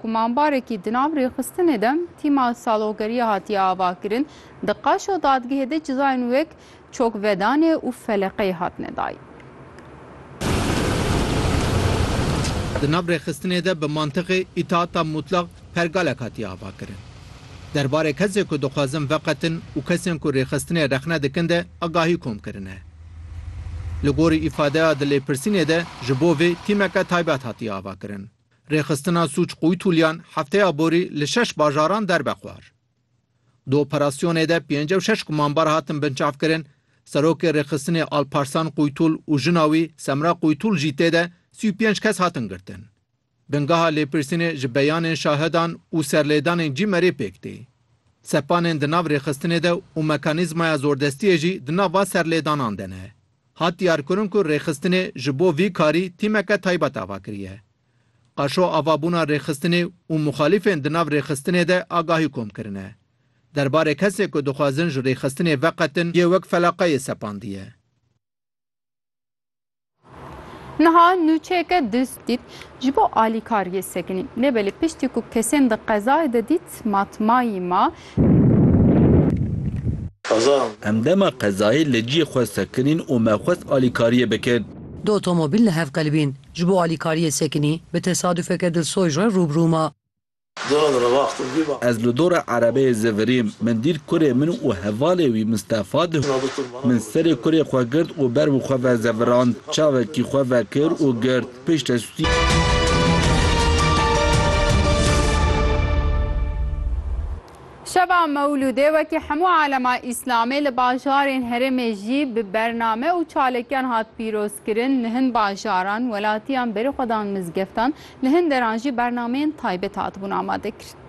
Kumanbarekî di nav rêxistinê de tîma salogeriya hatiye avakirin, di qaş û dadgehê de cizayên wek çokvedanê û feleqeyê hatine dayîn. Di nav rêxistinê de bi mantiqê îtaata mutlax pergalek hatiye avakirin. Derbarê kesên ku dixwazin veqetin û kesên ku rêxistinê rexne dikin de agahî kom kirine. Li gorî îfadeya di lêpirsînê de ji bo vê tîmeke taybet hatiye avakirin. Rêxistina Sûc Qoytulyan hefteya borî li şeş bajaran derbe xwar. Di operasyonê de pêncî û şeş gumanbar hatin binçavkirin, Serokê Rêxistinê Alparslan Qoytul û jina wî Semra Qoytul jî tê de sî û pênc kes hatin girtin. Bingeha lêpirsînê ji beyanên şahidan û serlêdanên CÎMER'ê pêk tê. Sepanên di nav rêxistinê de û mekanîzmaya zordestiyê jî di nava serlêdanan de ne. Hat diyarkirin ku rêxistinê ji bo vî karî tîmeke taybet ava kiriye. Qaşo ava bûna rêxistinê û muxalîfên di nav rêxistinê de agahî kom kirine. Derbarê kesên ku dixwazin ji rêxistinê veqetin yê wek felaqeyê sepandiye. Niha nûçeyeke dûst dît ji bo alîkariyê sekinî. Lê belê piştî ku kesên di qezayê de dît matmayî ma. Em dema qezayê li ciyê xwe sekinîn û me xwest alîkariyê bikin. Du otomobîl li hev qelibîn. Ji bo alîkariyê sekinî, bi tesadûfeke dilsoyj re rû bi rû ma. Ez li dora erebeyê zivirîm. Min dît kurê min û hevalê wî Mistefa di. Min serê kurê xwe girt û ber bi xwe ve zevirand. Çavekî xwe vekir û girt. Şeva Mewlûdê wekî hemû alema Îslamê li bajarên herêmê jî bi bername û çalekiyan hat pîrozkirin. Li hin bajaran, welatiyan berî xwe dan mizgeftan, li hin deran jî bernameyên taybet hatibûn amadekirin.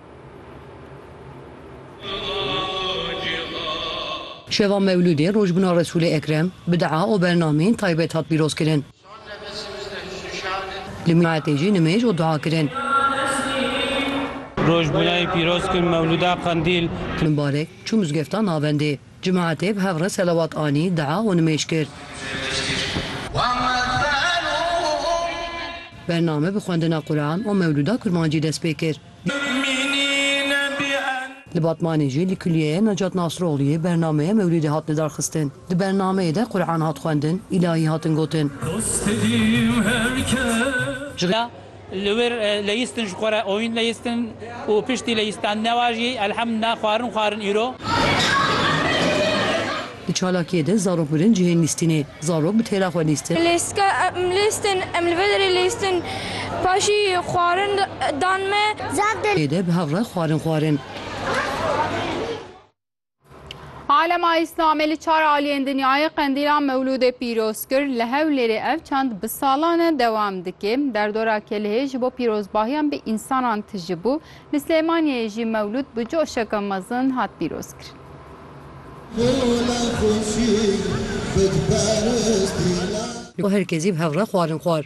Şeva Mewlûdê rojbûna Resûlê Ekrem bi dua û bernameyên taybet hat pîrozkirin. Li miletê jî nimêj û dua kirin. Roj bûnayî pîroz kin mewlûda qendîl. Min barek çû mizgefta navendê. Cemaetê bi hev re selewat anî, dua û nimêj kir. Bername bi xwendina Quran û mewlûda kurmancî dest pê kir. Li Batmanê jî li Kulîyeya Necat Nasroglûyê bernameya mewlîdê hat lidarxistin. Di bernameyê de Quran hat xwendin, îlahî hatin gotin. Jixwe li wir leyistin ji xwe re oyîn leyistin û piştî leyistandina wan jî elhemdillah xwarin xwarin îro. Di çalakiyê de zarok mirin cihên lîstînê. Zarok bi têra xwe lîstin. Lîstika em lîstin, em li vê derê lîstin. Paşî xwarin dan me. Pê de bi hev re xwarin xwarin. Alema Îslamê li çar aliyên dinyayê qendîla Mewlûdê pîroz kir. Li Hewlêrê ev çand bi salan e dewam dike. Derdora Kelihê ji bo pîrozbahiyan bi însanan tije bû. Li Silêmaniyeyê jî Mewlûd bi coşeke mezin hat pîrozkirin. Ku her kesî bi hev re xwarin xwar.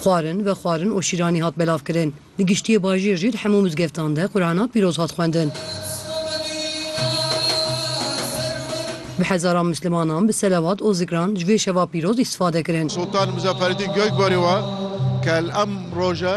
Xwarin ve xwarin û şîranî hat belavkirin. Di giştiyê bajêr jî di hemû mizgeftan de Qurana pîroz hat xwendin. Bi hezaran mislimanan bi selewat û zikran ji vê şeva pîroz îstifade kirin. Sultan Muzafferedîn Gökbari wa kel em roje.